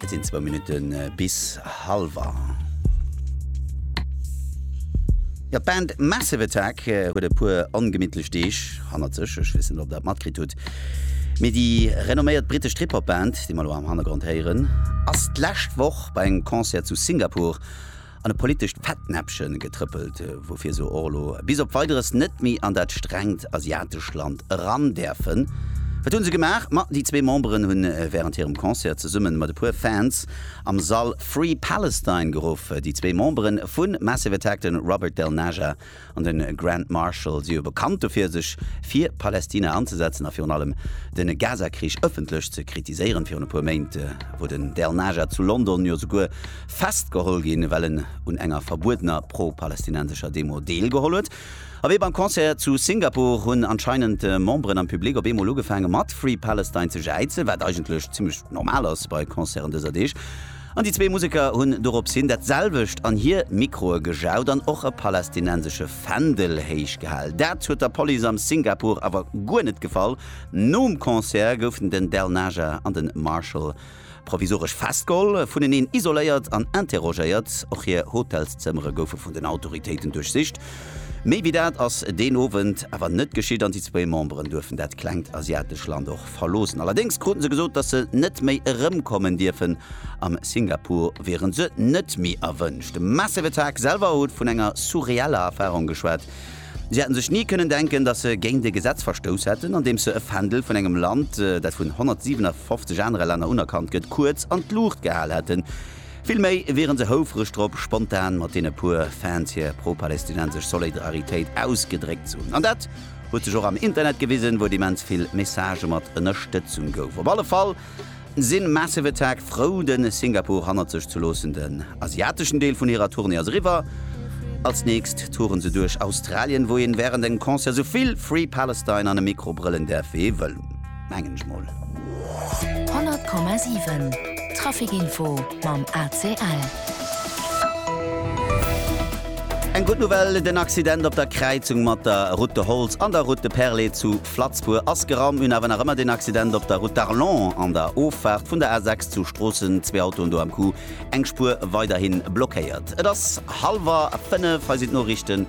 Et sinn zwou Minutten bis hallwer. Jo, d'Band Massive Attack huet e puer ongemittlech Deeg hannert sech. Ech weess net, ob der et matkritt hutt, mee déi renomméiert brittesch Trip-Hop-Band, déi mer elo am Hannergrond héieren, ass d'lescht Woch bei engem Concert zu Singapur an e politescht Fettnäppchen getrëppelt, woufir se och elo bis op Weideres net méi an dat strengt asiatescht Land eran däerfen. Wat hunn se gemaach? Ma déi zwee Memberen hunn wärend hirem Concert zesummen mat e puer Fans am Sall Free Palestine geruff. Déi zwee Memberen vu Massive Attack, de Robert Del Naja an de Grand Marshal si jo bekannt dofir, sech fir Palästina anzesetzen a virun allem de Gazakrich ëffentlech ze kritiséieren. Virun e puer Méint wor den Dernajad zu London jo souguer festgeholl ginn, well en un enger verbuedener pro-palästinensescher Demo deelgeholl huet. A wéi beim Concert zu Singapur hunn anscheinend Memberen am Public op eemol ugefaange mat Free Palestine ze jäizen, wat eigentlech zimmlech normal ass bei Concerten dëser Deeg. An déi zwee Museker hunn doropshin dat selwecht an hir Mikroe gejaut an och e palästinensesche Fändel héich gehal. Dat huet der Police am Singapore awer guer net gefall. Nom Concert goufen den Del Naja an den Marshall provisoresch festgeholl, vuneneen isoléiert an interrogéiert. Och hir Hotelszëmmere goufe vun den Autoritéiten duerchsicht. Méi wéi dat ass deen Owend awer net geschitt an déi zwee Memberen duerfen dat klengt asiatescht Land och Land verloossen. Allerdéngs kruten se gesot, datt se net méi erëmkommen dierfen. Am Singapur wieren se net méi erwënscht. De Massive Attack selwer huet vun enger surreeller Erfarung geschwat. Si hätten sech ni kënnen denken, datt se géint e Gesetz verstouss hätten, andeems se e Fändel vun engem Land, dat vun 157 anere Länner unerkannt gëtt, kuerz an d'Luucht gehal hätten. Vill méi wieren se houfreg drop, spontan mat deene puer Fans hir pro-palästinensesch Solidaritéit ausgedréckt ze hunn. An dat, Huet sech och am Internet gewisen, wou et immens vill Messagë mat Ënnerstëtzung gouf. Op alle Fall sinn Massive Attack frou de Singapore hannert sech ze loossen. Den asiateschen Deel vun hirer Tournée ass eriwwer. Als nächst toure se duerch Australien, wou een wärend engem Concert souvill Free Palestine an e Mikro brëllen däerf, wéi ee wëll. mengen ech mol. 100,7 Traficinfo mam ACL. Eng gutt Nouvelle, den Accident op der Kräizung mat der Route de Holtz an der Route de Perlé zu Flatzbour ass geraum. Mir hunn awer nach ëmmer den Accident op der Route d'Arlon an der Offaart vun der A6 zu Stroossen. Zwee Autoen do am Coup, eng Spuer weiderhi blockéiert. Et ass hallwer fënnef, hei sinn d'Noriichten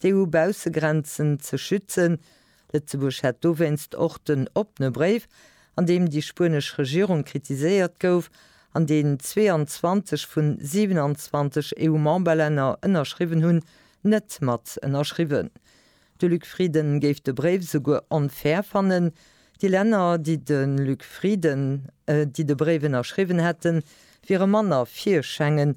d'EU-Baussegrenzen ze schützen. Lëtzebuerg hat dowéinst och den oppene Bréif, an deem déi spuenesch Regierung kritiséiert gouf, an deen 22 vun 27 EU-Memberlänner ënnerschriwwen hunn, net mat ënnerschriwwen. De Luc Frieden géif de Bréif souguer onfair fannen. Déi Länner, déi de Luc Frieden, déi de Bréif ënnerschriwwen hätten, wiere manner fir Schengen,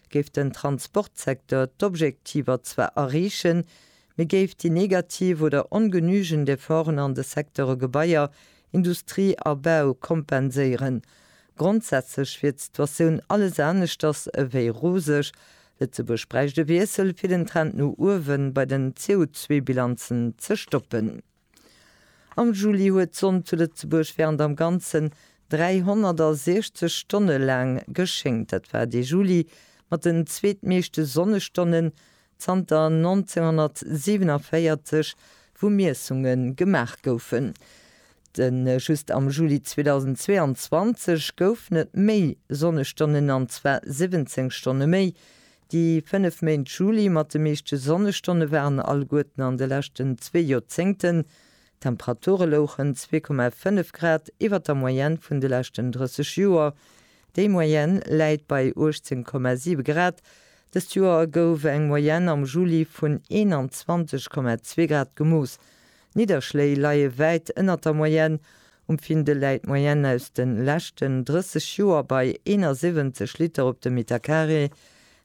géif den Transportsecteur d'Objektiver zwar erreechen, mee géif déi negativ oder ongenügend Efforten an de Secteure Gebaier, Industrie a Bau kompenséieren. Grondsätzlech wier d'Situatioun alles aneschters ewéi roseg. Lëtzebuerg bräicht e Wiessel, fir den Trend no uewen bei den CO2-Bilanzen ze stoppen. Am Juli huet d'Sonn zu Lëtzebuerg während am Ganzen 360 Stonne laang geschéngt. Dat war dee Juli mat den zweetmeeschte Sonnestonnen zanter 1947, wou Miessunge gemaach goufen. Just am Juli 2022 goufen et méi Sonnestonnen, an zwar 17 Stonne méi, Déi fënnef Méint Juli mat de meeschte Sonnestonne waren alleguerten an de leschten zwee Joerzéngten. D'Temperature louchen 2,5 Grad iwwer der Moyenne vun de leschten 30 Joer. Déi Moyenne läit bei 18,7 Grad. Dëst Joer gouf eng Moyenne am Juli vun 21,2 Grad gemooss. D'Nidderschléi leie wäit ënnert der Moyenne. Um Findel läit d'Moyenne aus de leschten 30 Joer bei 71 Liter op de Metercarré.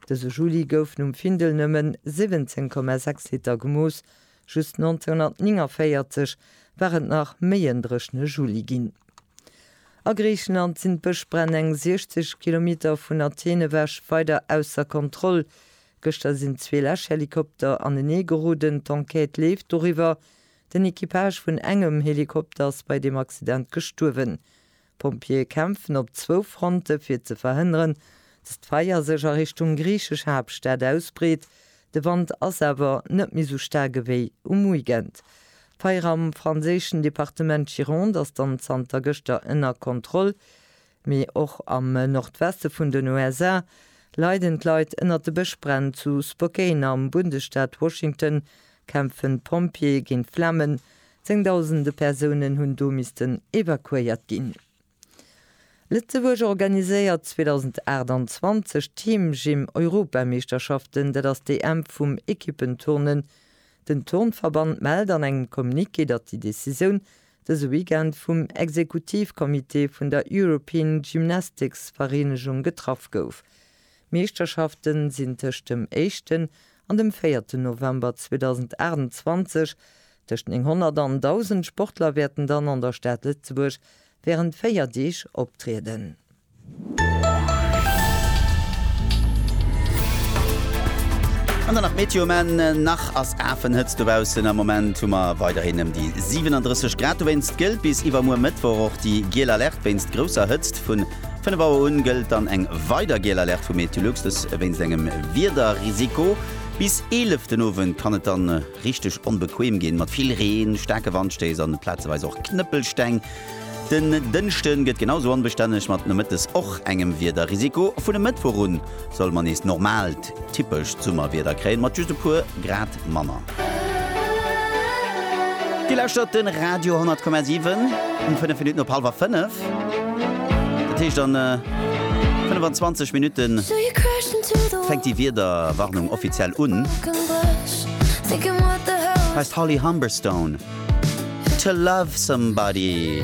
Dëse Juli goufen um Findel nëmme 17,6 Liter gemooss, just 1949 war et nach méi en dréchne Juli ginn. A Griichenland sinn d'Bëschbränn eng 60 Kilometer vun Athen ewech weider ausser Kontroll. Gëschter sinn zwee Läschhelikopter anenee geroden. D'Enquête leeft doriwwer. Den Equipage vun engem Helikopter ass bei deem Accident gestuerwen. D'Pompjeeë kämpfen op zwou Fronte fir ze verhënneren, dass d'Feier sech a Richtung griichesch Haaptstad ausbreet. De Wand ass awer net méi sou staark ewéi um Weekend. D'Feier am franséischen Departement Gironde ass dann zanter gëschter ënner Kontroll. Mee och am Nordweste vun den USA leiden d'Leit ënnert de Bëschbränn. Zu Spokane am Bundesstaat Washington kämpfen d'Pompjeeë géint d'Flammen. Zéngdausende Persounen hunn do missten evakuéiert ginn. Lëtzebuerg organiséiert 2028 d'Team Gym Europameeschterschaften. Dat ass d'EM vum Equippenturnen. Den Turnverband mellt an engem Communiqué, datt déi Decisioun Dëse Weekend vum Exekutivcomité vun der European Gymnastics Vereenegung getraff gouf. D'Meeschterschaften sinn tëscht dem éischten an dem véierten November 2028. Tëscht 900 an 1000 Sportler wäerten dann an der Stad Lëtzebuerg wärend 4 Deeg optrieden. An dann nach d'Meteo, Maann nach ass afen Hëtzt dobaussen. Am Moment hu mer weiderhin ëm déi 37 Grad. Dowéinst gëllt bis iwwermuer Mëttwoch och déi giel Alerte wéinst grousser Hëtzt. Vun 5 Auer un gëllt dann eng weider giel Alerte vu Meteolux, dës wéinst engem Wiederrisiko. Bis 11 den Owend kann et dann richteg onbequeem ginn, mat vill Reen, staarke Wandstéiss an plazeweis och Knëppelsteng. Den Dënschde gëtt genau sou onbestänneg, mat nomëttes och engem Wiederrisiko. Vun e Mëttwoch un solle mer nees normaalt, typescht Summerwieder kréien, mat just e puer Grad manner. Dir lauschtert de Radio 10,7 um 5 Minutten op hallwer 5. Dat heescht, an 25 Minutte fänkt déi Wiederwarnung offiziell un. Hei ass d'Holly Humberstone, To Love Somebody.